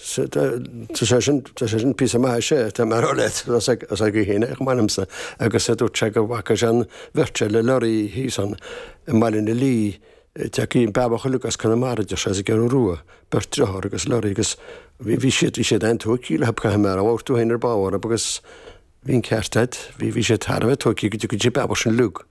Tá sé sin, tá sé sin píosa maith, is ea, tá mé a rá leat, as, as a haoin, chomh maith liomsa, agus dúirt sé gur bhfaca sé an bheirt seo le lorraí thíos ann i mBaile na Léi, Taimí Bheaba Luke as Conamara, deir sé, as an gCeathrú Rua, beirt driotháir agus lorraí, agus bhí, bhí siad, bhí siad an-tógthaí le Bob, caithfidh mé a rá, mar a dúirt tú féin ar ball orthu, agus bhí an ceart a'd, bhí, bhí siad thar a bheith tógthaí go dtí, go dtí Beaba sin Luke.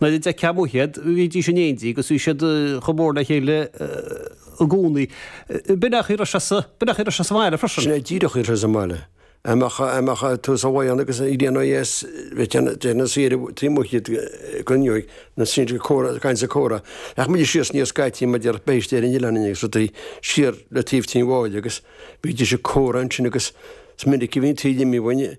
Nuair a d'fheicfeá amuigh iad, bhídís in éindí agus bhí siad chomh mór le chéile i gcónaí. B'in é a raibh sé sa mbaile freisin. Sin é díreach a raibh sé sa mbaile. Dá mbeadh tú sa bhan agus ag déanamh a dheas, bheadh siad thiar taobh amuigh díot i gcoirnéal na straidhpe ag caint is ag comhrá. Ach muide síos aniar scaití mar déarfá beithígh ar an oileán linn agus rudaí, siar le taobh Tigh Mháille agus bhídís ag comhrá ansin agus is minic a bhí an taoille imithe uainn.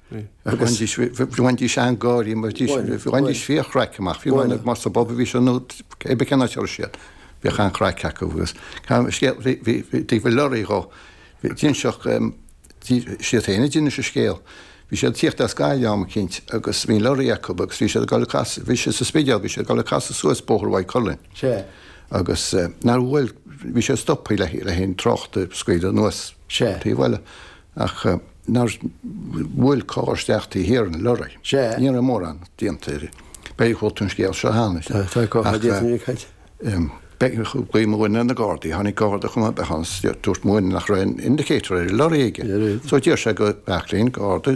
Bhí, bhainidís an-gháirí, bhí, bhainidís fíorchraic amach, bíodh mar sa bpub a bhí siad nó cébí cén áit a raibh siad, bhíodh an-chraic acu agus scéal, bhí taobh le leoraí dhó, d'inseodh siad féin a d'inis an scéal, bhí siad ag tíocht as Gaillimh am eicínt agus bhí leoraí acu agus bhí siad ag dul ag casadh, bhí siad sa Spidéal, bhí siad ag dul ag casadh suas Bóthar Mhaigh Cuilinn. Sea. Agus nár bhuail, bhí siad ag stopadh le haghaidh trácht a scaoileadh anuas taobh an bhaile. Ach nár bhuail carr isteach taobh thiar den lorry. Sea. Ní raibh mórán déanta air. B'fhéidir gur chuala tú an scéal seo cheana. Tá, tá go maith déanta ag Cáit. B'éigean glaoch, muidne, na Gardaí. Tháinig Garda chomh maith ann is dúirt mo dhuine nach raibh aon indicator ar an lorry aici. So d'iarr sé de Bheairtlín, Garda,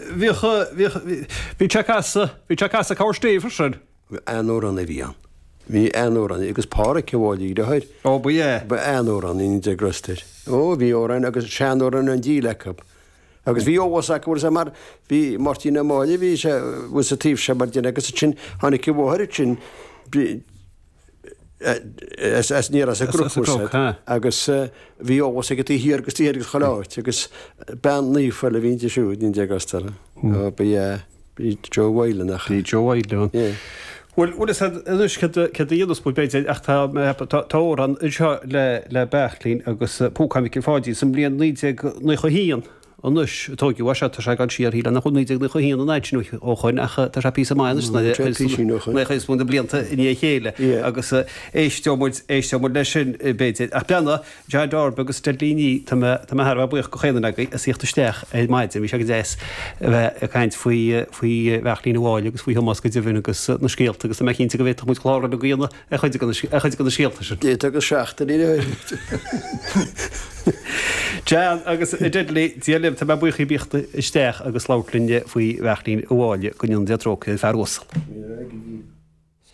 Bhíodh, bhíodh, bhí Chuck as, bhí Chuck as a' Cabhar Stéibhe sin. An-amhrán a bhí ann. Bhí an-amhrán agus Pádraic an Bháille a dheartháir. Ó ba ea? Ba an-amhrán iníon de Grosstair. Ó bhí amhráin agus seanamhráin an diabhail acu. Agus bhí eolas acu ar mar bhí Máirtín Ó Máille bhí sé bhí sa taobh seo mar den agus ansin tháinig a mháthair ansin aniar as an gcriathrach sin agus bhí eolas aige taobh thiar agus taobh thoir agus chuile áit agus bean naofa le bhínnte siúd, naoi déag ochtó dó. Bhí Joe Whalen acu. Bhí Joe Whalen ann. Ie. Bhuel, bhuel is anois céard a dhéanfas muid b'fhéidir ach tá tá amhrán anseo le le Beairtlín agus Púcán Mhicil Pháidín sa mbliain 1991. anois. Tóigeadh é, tá sé ag dul siar, shílfeá nach bhfuil 1991 an t-achar sin ó shin ach tá sé píosa maith anois, cúig is fiche blianta i ndiaidh a chéile agus éisteoidh muid, éisteoidh muid leis sin b'fhéidir. Ach Jan Jeaic Darby agus Dudley Nee, tá mé, tá mé thar a bheith buíoch de chaon duine agaibh as tíocht isteach ar maidin, bhí sé go deas a bheith ag caint faoi, faoi Bheairtlín Ó Máille agus faoi Thomás go deimhin agus na scéalta agus tá mé cinnte go bhféadfadh muid clár eile a dhéanamh. ar chuid de na scéalta sin. Deich agus seacht a rinne mé. Jan agus Dudley, Dia libh, tá mé buíoch as tíocht isteach agus labhairt linn faoi Bheairtlín Ó Máille, go ndéana Dia trócaire air, fear uasal.